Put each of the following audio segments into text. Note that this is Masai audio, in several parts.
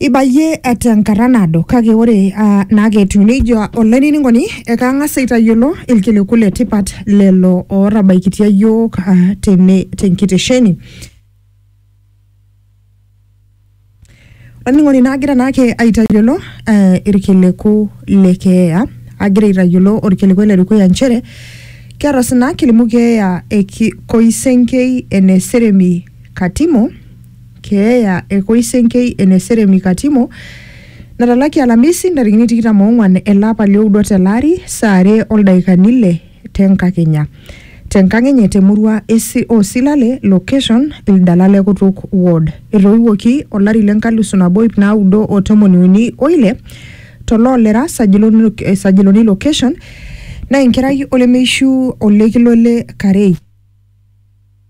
Ibayie tenkata naado kake ore uh, naake etiu nejia olainining'oni ekang'as aitayiolo ilkiliku le tipat lelo ootabaikitia iyiook uh, tene tenkitesheni. Olainining'oni naagira naake aitayiolo uh, ilkiliku le keeya agira aitayiolo olkiliku le dukuya nchere keeta sina kilimu keeya e Koisenkei ene Seremi Katimo keeya e Koisenkei ene Seremi Katimo natalaki Alamisi ntarikini tikitam oong'uan ele apa lioudo tele ari saa are oldaikani ile tenkakenya tenkang enye temurua esi o Silale location Ildala le Kutuk ward. Etoiwuoki olari le nkalusu nabo ip naudo o tomoni uni o ile to Loolera Sajiloni, eh, Sajiloni location naa enkerai olemeishu Olekilo le Karei.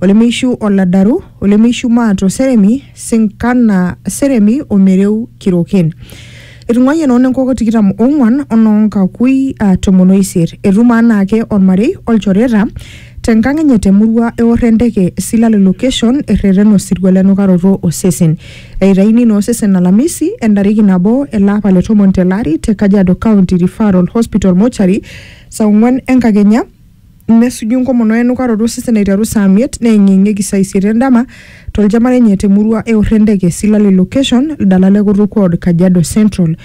Olemeishu oladaru, olemeishu maat o seremi, sinkana, seremi o mereu kiroken. Etung'uayie noo nenkoko tikitam ong'uan o noo nkakui aa tomon o isiet. Etum anaake olmarei o lchoreta te nkang enye te murua eor e ndeke Silale location erreten osirua le nukaroto o sesen. Eitayuni ina osesen alamisi e ntariki nabo ele apa le tomon te lari te Kajiado County Referral Hospital Mortuary saa ong'uan e nkakenya Nesuju enkomono o enukaroto osesen aiteru saa miet neeng'ieng'ieki saa isiet endama toljama lenye te murua e Orrendeke, Silali Location, Ldala le Kutuk Ward, Kajiado Central.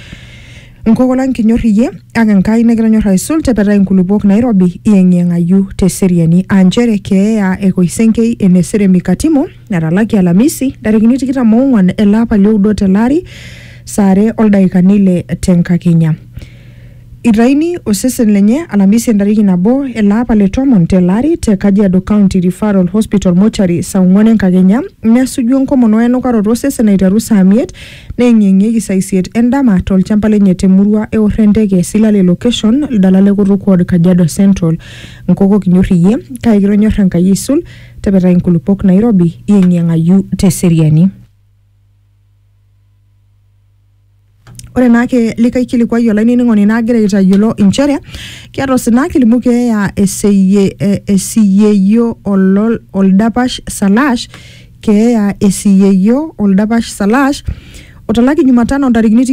Nkoko lang kinyor iyie ak Enkai nikitonyor aisul tepetai nkulupuok nairobi iyeng'iyeng'ayu te seriani aa nchere keeya e Koisenkei ene Seremi Katimo etalaki Alamisi ntarikini tikitam oong'uan ele apa lioudo tele ari saa are o ldaikani ile te nkakenya. Itaini osesen lenye alamisi entariki nabo ele apa le tomon tele ari te Kajiado County Referral Hospital Mortuary saa ong'uan enkakenya nesuju enkomono we enukaroto osesen aiteru saa miet neeng'ieng'ieki saa isiet endama tolchamba lenye te murua e Orrenteke, Silale Location, Ldalale Kutuk Ward, Kajiado Central. Nkoko kinyor iyie kake kitonyor Enkai aisul, tepetai nkulupuok nairobi iyeng'iyeng'ayu te seriani. Ore naake likae kilikuai olainining'oni nagira aitayiolo inchere keeta osina kilimu keeya eseyie eh, esiyeyio olol oldapash salash keeya esiyeyio oldapash salash otalaki jumatano ntarikini